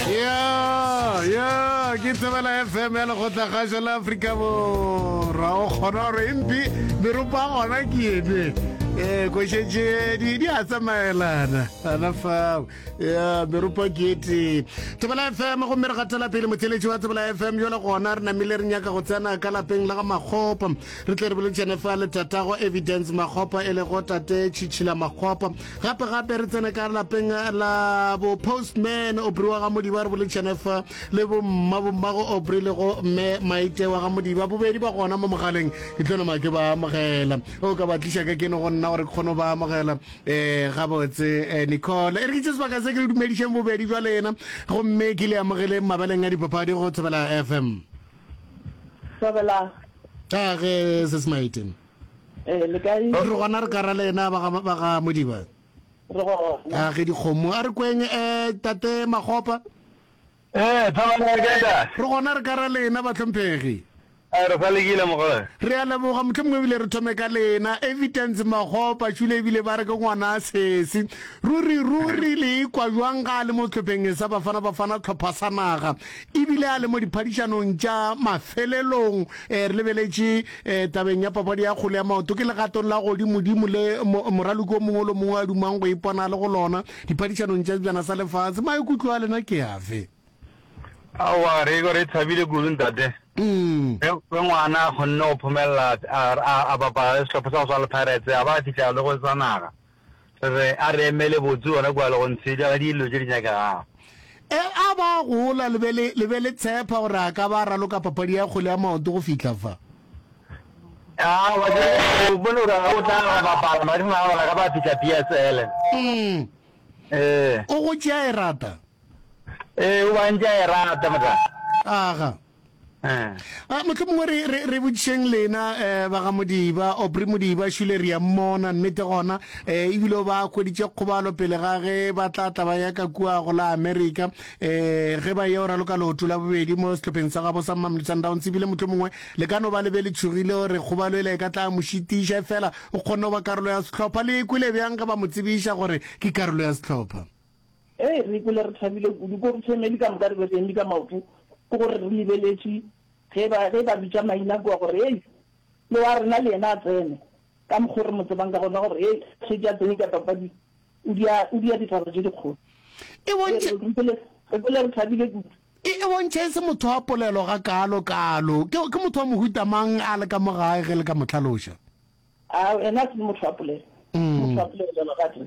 ya ya ke tsebela fm ya lekgotlakgašo la aforika borwa o kgona gore empi meropa gona ke ebe um eh, košetšedi di a tsamaelana ana fao ya meropa ke etee tsebela fm gomme re gatela pele motheletši wa tsebela fm jale gona re namile re nyaka go tsena ka lapeng la ga makgopa re tle re bolotšhane fa le tatago evidence makgopa e lego tate tšhitšhila makgopa Gape gape re tsene ka lapeng la bo postman Obri wa ga Modiba re bole Chenefa le bo mma bo mmago Obri le go mme Maite wa ga Modiba bobedi ba gona mo mogaleng ke tlo nama ke ba amogela o ka ba tliša ka ke no go nna gore ke kgone ba amogela um gabotse eh, Nicole e re ke tse sebaka se ke le dumedišeng bobedi jwa lena gomme ke le amogeleng mabeleng a dipapadi go thobela FM Thobela. a ge se se maiteng Eh, le kae? Re gona re ka ra le ena ba ga- ba ga modiba Re gona. a ge dikgomo a re kweng um tate magopa Eh, Thabang ya kae da? re gona re ka ra le ena batlhomphegi Eh, re sa lekile mogole. re a leboga motlho mongwe ebile re thome ka lena evidence magopa tšhule ebile ba re ke ngwana a sesi ruri ruri le ikwa jwang ga a le mo tlhopheng e sa bafana bafana tlhopha sa naga ebile a le mo diphadišanong tša mafelelong um re lebeletše E, tabeng ya papadi ya kgole ya maoto ke legatong la godimodimo le moraloki o mongwe lo mongwe a dumang go ipona le go lona diphadišanong tša sebjana sa lefatshe maikutlo a lena ke afe aowa re re thabile kudu ntate mm. ge ngwana a kgonne go phomelela a bapala le sehlopha sa go swana le pirates a ba a fitlhela le go sa naga Re re a re emele botse gona kua le go ntshedja ga dilo tše di nyakegago. E a ba a gola le be le, le be le tshepa gore a ka ba a raloka papadi ya kgole ya maoto go fihla fa. Aa, wa tseba ke a go bone gore ga o tla go bapala madimo a gona ka ba fihla PSL. Mm. Ee. O go tšea e rata. Ee, o ba ntša e rata motla. Aga. A mohlomongwe re, re, re botšišeng lena, eh, ba ga Modiba, Obri Modiba, šule re a mmona, nnete gona, eh, ebile o ba hweditše kgobalo pele ga ge ba tla tla ba ya ka kua go la Amerika, eh, ge ba yeo raloka leoto la bobedi mo sehlopheng sa gabo sa Mamelodi Sundowns, ebile mohlomongwe le ka no ba le be le tšhogile gore kgobalo ela e ka tla mo šitiša, efela o kgonne go ba karolo ya sehlopha. Le e kwele bjang ge ba mo tsebiša gore ke karolo ya sehlopha? Ee, re ikwele re thabile kudu. Ko re family ka moka re be re eme ka maoto, ke gore re lebeletše ge ba ge ba bitša maina kua gore, Hei, yo wa rena le yena a tsene. Ka mokgwa o re mo tsebang ka gona gore, Hei, a šetše a tsene ka papading, o dia, o dia ditaba tše dikgolo. E bontšhe. Re ikwele, re ikwele re thabile kudu. E, e bontšhe e se motho wa polelo gakaalo kaalo. Ke, ke motho wa mohuta mang a le ka mo gae ge le ka mo hlaloša? A, ena a se motho wa polelo. Motho wa polelo, Lerato.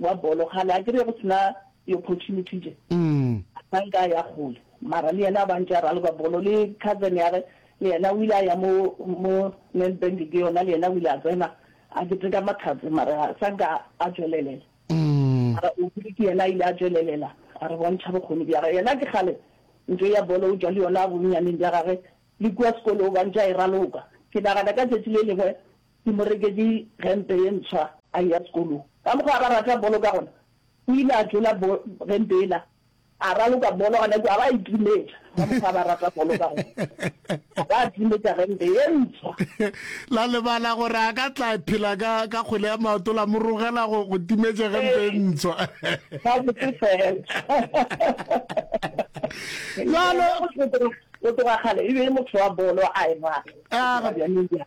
wa bolo kgale a kere go sena di opportunity tše ga nka ya kgole mara le yena a bantše a raloka bolo le cousin ya ge le yena o ile a ya mo mo Nedbank ke yona le yena o ile a tsena a keteka mathats mara sa nka a tšwelelela mara o bile ke yena a ile a tšwelelela a re bontšha bokgoni bja ge yena ke kgale ntho ya bolo o tšwa le yona a bonnyaneng bja gage le kua sekolo o bantše a e raloka ke nagana ka tšatši le lengwe Ke mo reketše gempe ye ntshwa a eya sekolong. Ka mokgwa a ba rata bolo ka gona, o ile a tlola gempe yela a raloka bolo. Gane kwa a ba itimetša ka mokgwa a ba rata bolo ka gona, a ba atimetša gempe ye ntshwa. La lebala gore a ka tla phela ka ka kgwele ya maoto la mo rogela go go timetše gempe e ntshwa. Ka botse fela. Jalo go tloga kgale e be motho wa bolo a e rata.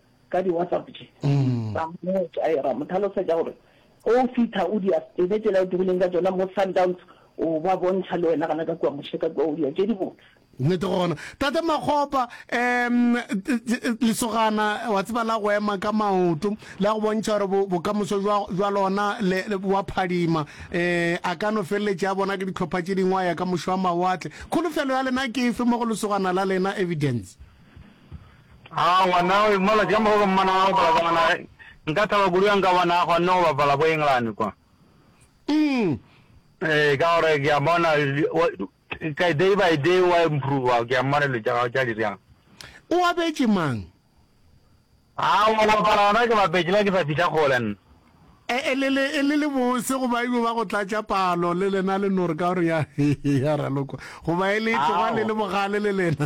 ka di WhatsApp tše ba mmotša era mo tlhalosetša gore ge o fitha o dia tsebe tšela o dirileng ka tšona mo Sundowns o ba bontšha le wena gana ka kua moše ka kua o dia tše dibotse. Nnete gona tate Makgopa um lesogana wa tseba la go ema ka maoto la go bontšha gore bokamoso jwa lona wa phadima um a ka no feleletše a bona ke ditlhopha tše dingwe a ya ka mošo wa mawatle kholofelo ya lena ke efe mo go lesogana la lena evidence Haa ngwana o malatsi ka moka ke mmona a bapala ka gona nka thaba kudu ga nka bona a kgonne go bapala ko England kwa. Eng? Ee, ka gore ke a bona ka day by day wa improva ke a mmona dilo tša gago tša di bjang. O abetše mang? Haa go bapala gona ke bapetše la ke sa fihla kgole nna. E, e le le e le le bose go ba ibo ba go tlatša palo le lena le nore ka gore ya ya ralokwa go ba e le tloga le le bogale le lena.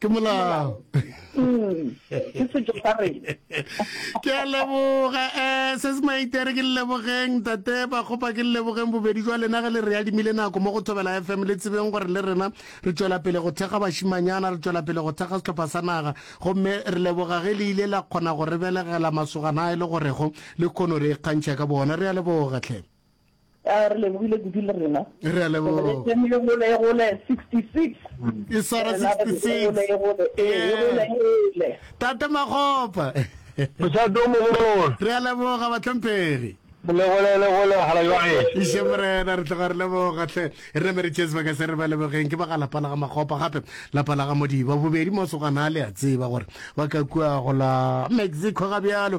ke molao ke setso sa rena ke a leboga um se se maitere ke lelebogeng tate ba kgopa ke lelebogeng bobedi jwa lena ge le re adimile nako mo go thobela f m le tsebeng gore le rena re tswela pele go thekga bašimanyana re tswela pele go thekga setlhopha sa naga gomme re leboga ge le ile la kgona go re belegela masogana a e le gorego le kgono re ikgantšha ka bona re a leboga tlhe A re lebogile kudu le rena. Re a leboga. Re tsene le gole e gole 66. E swara 66. E gole e gole. Eh. Tate Magopa. Mosato mogolo. Re a leboga batlhomphegi. Le gole le gole bagala jwa gae. Iše morena re tloga re leboga hle. Re me re tšee sebaka se re ba lebogeng ke ba ga lapa la ga Magopa gape lapa la ga Modiba bobedi mosogana a le a tseba gore ba ka kua go la Mexico ga bjalo